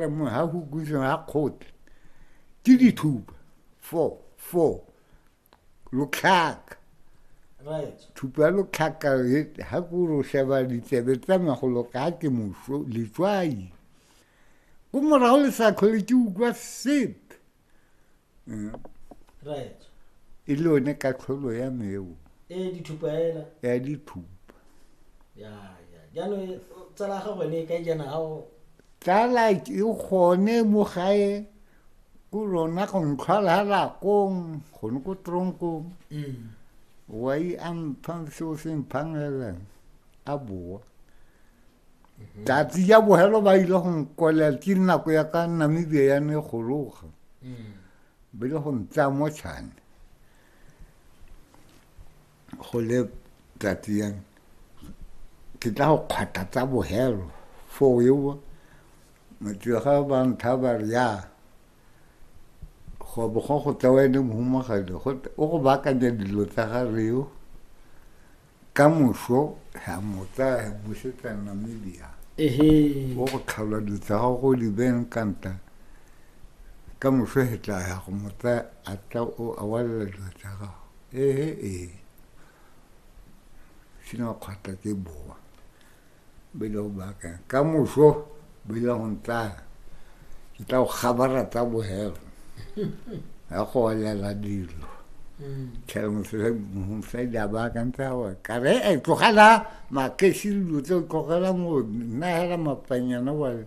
mongwe ga go kutleng ga kgote ke dithupa four four lotlhaka thupa ya lotlhaka ga ko ro sheba ditsebe tsa magolo ka ke moso letswai ko morago le sa tlhole ke utlwa sepe eh. right e le one katlholo ya meo e dithupa ela ya dithupa ya ya jaanong tsala ga gone e ka jana ga o tsala ke gone mo gae ko rona go ntlhwala lakong gone ko tronkong mm. wa i amphang seo se mphang elang a boa mhm. tsatsi ja bogelo ba ile go nkolela ke nako ya ka namibia ya ne gologa mm. ba ile go ntsaya mo tšhane go le tsatsi yang ke tla go kgwata tsa bogelo foo ewa motega ba ntha ba re ya go bo go go tsewa ene mohumagadi o go baakanya dilo tsa ga reo ka moso ra mo tsaya re busetsa namibia ehe o go tlhalwa dilo tsa gago go di beng kanta ka moso he tla ya go mo tsaya a tla o a walela dilo tsa gago ehe ee sena kgwata ke boa bele o baakang ka moso bele go ntlaya ke tla go kgabara tsa bogelo ya go olela dilo tlhela mosadi a baakantse a gore kare e tlogela makesi dilo tse o tlogela mo nna hela mapanyana bale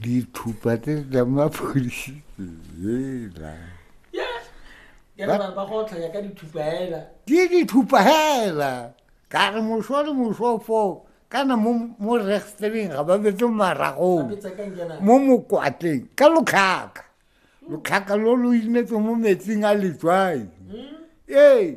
dithupa tse tsa mapodisi ela ke dithupa hela ka re moso le moso foo kana mo restering ga ba betse maragong mo mokwatleng ka lotlhaka lotlhaka lo lo inetse mo metsing a letswai hmm? ee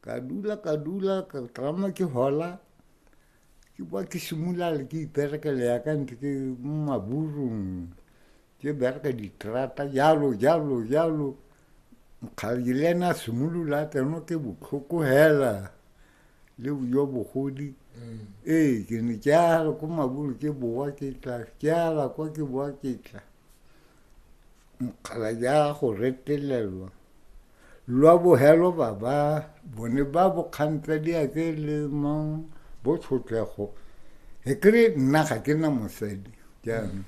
ka dula ka dula ka tlama ke hola ke kwa ke simolale ke iperekele ya ka ntse ke mo maburung ke bereka diterata jalo jalo jalo nkgadi le ena a simolola tseno ke botlhoko hela le jo bogodi mm. ee ke ne ke ala ko maburu ke bowa ke tla ke ala kwa ke bowa ke tla nkgala ya go retelelwa lwa bogelo ba ba bone ba bokgantsa di a tse le mang bo tshotlego e kry nna ga ke na mosadi jaanong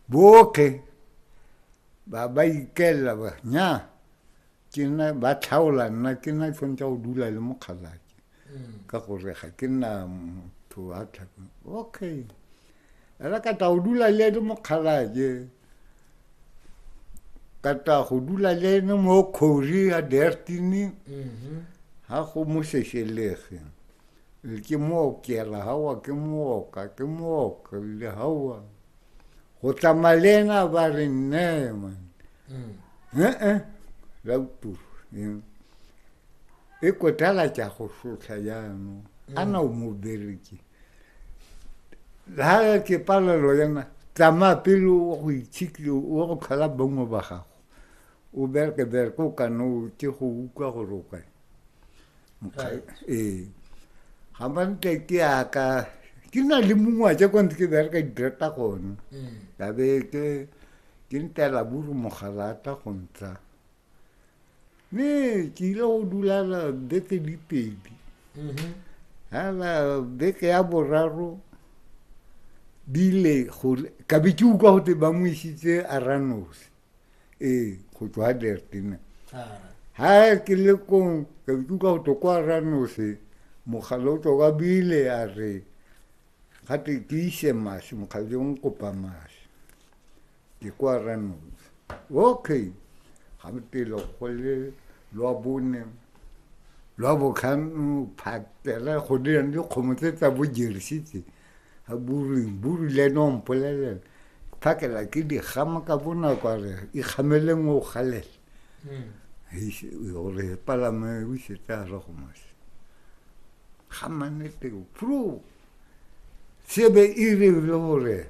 botlhe ba ba ikelela ba nya ke na ba tlhaola nna ke na tshwanetse go dula le mokgalake ka gore ga ke nna motho wa tlhaka okay ela ka tla go dula le ene mokgalaje ka tla go dula le ene mo kgori ya dertini ga go mo sešelege ke mookela gawa ke mooka ke mooka le gawa go tsamaya le ena ba re nne man ee la uturu e kotala tša go šotlha yano mm. ana o mo bereke ha ke palelo yana tsamaya pele wa go itshikle wa go tlhola bongwe ba gago o bereke bereke o kana o ke go utlwa gore o kae ee ga mantle ke yaka ke na le mongwe a tse kwa ntse ke bereka didireta gone mm. ka be ke ke ntela buru mogalata go ntsha mme ke ile go dula beke di pedi mm-hmm. aa beke ya boraro di ile ka be ke utlwa gote ba mo isitse aranosi ee go tswa ga dertina ga ah. ke le kong ka be ke utlwa gote kwa aranosi mogala o tswa kwa bile a re gate ke ise masi mokgale o nkopa masi Di kwa Randolph. Okay. Ga mo pelo go le lwa bone lwa botlhano phatela go dira le kgomo tse tsa bo jersitse a buring buru le no mpolelela phakela ke di gama ka bonako a re e gamele ngwe o galela gore palame o isetse a re go mose ga maneteo pro sebe e re le gore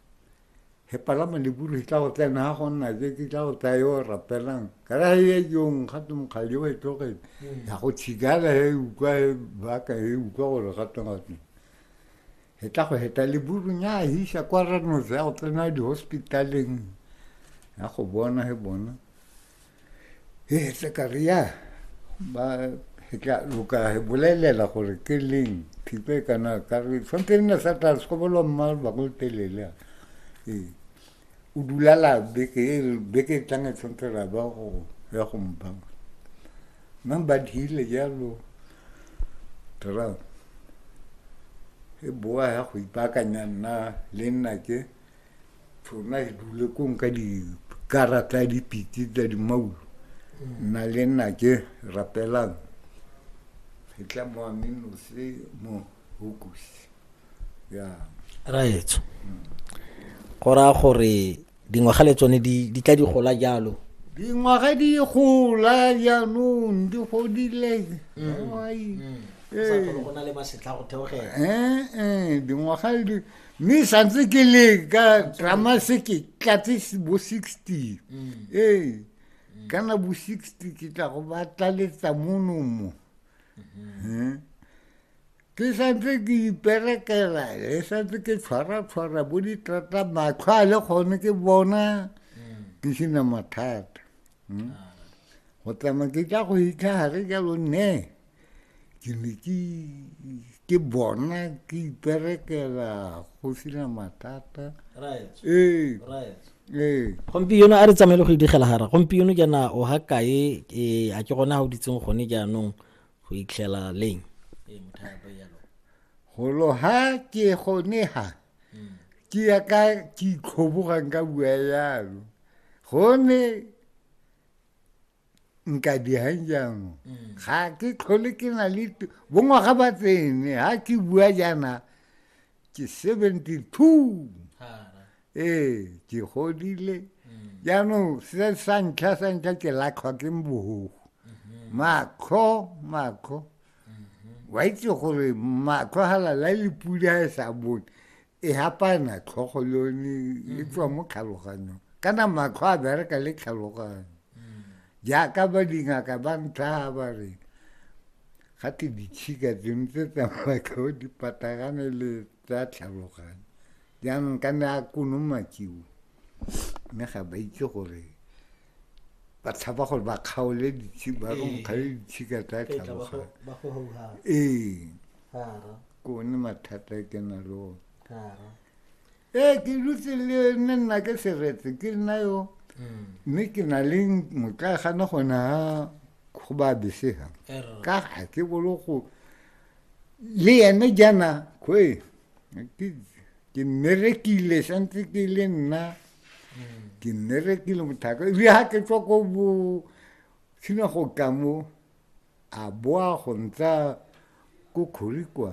he palama le buru he tla go tla na go nna ke ke tla go tla yo rapelang ka ra ye yo ga tu mo khayo e to ke ya go tshigala he u kwa he ba ka he u kwa go re ga tanga tse he tla go heta le buru nya hi sha kwa ra no za go tsena di hospitaleng ya go bona he bona e tla ka re ya ba e tla loka e bolelela gore ke leng thipe kana ka re tshwanetse nna sa tla sekobolo mma ba go telele ee o dulala beke e beke e tlang e tshwanetse ra ba go ya go mpa mma ba dile jalo tara e boa ya go ipakanya nna le nna ke Tsona dule kong ka dikarata ya dipitse tsa dimaulo nna le nna ke rapelang fetla mo aminose mo hokusi ya raetso go raya gore dingwaga le tsone di tla di gola jalo dingwaga di gola jaanong di godile mm. Mm. Eh. Eh, eh, dingwaga mme santse ke le ka drama se ke tlatse bo sixty mm. ee kana bo sixty ke tla go ba tlaletsa monomo mm-hmm. ke santse ke iperekela le santse ke tshwara-tshwara bo ditrata matlho a le gone ke bona mm. ke sena mathata hmm? ah. go tsamaya ke tla go itlha gare jalo nne ke ne ke bona ke iperekela go sena mathata ee ee gompieno a re tsamaele go idigela gara gompieno jaana o ga kae ee, a ke gona ga o ditseng gone jaanong go itlhela leng ee, golo ha ke gone ha hmm. ke ya ka ke itlhobogang ka bua yalo gone nka dijang jaanong mm. ga ke tlhole ke na le bongwaga ba tsene ga ke bua jaana ke seventy two ee ke godile mm. jaanong se sa ntlha sa ntlha ke latlhwa ke mbogogo mm-hmm. makgo makgo mm-hmm. wa itse gore makgo ga lala le pula e sa bone e hapana tlhogo le yone e mm-hmm. tswa mo tlhaloganyong kana matlho a bereka le tlhaloganyo jaaka ba dingaka ba ntlha ba re ga te ditshika tseno tse tsamatlho di patagane le tsa tlhaloganyo jaanong ka ne a konomakiwe mme ga ba itse gore ba tshaba gore ba kgaole ba ronkgale ditshika tsa tlhaboga ee ke one mathata e ke na le one ee ke dutse le ne nna ke seretse ke nna yo mm. mme ke na le motla gana gona go ba besega ka ga ke bolo go le ene jaana koe ke nne re kile santse ke le nna ke nne re kile mothaka le ha ke tswa ko bo tshina go ka mo a boa go ntsa ko khorikwa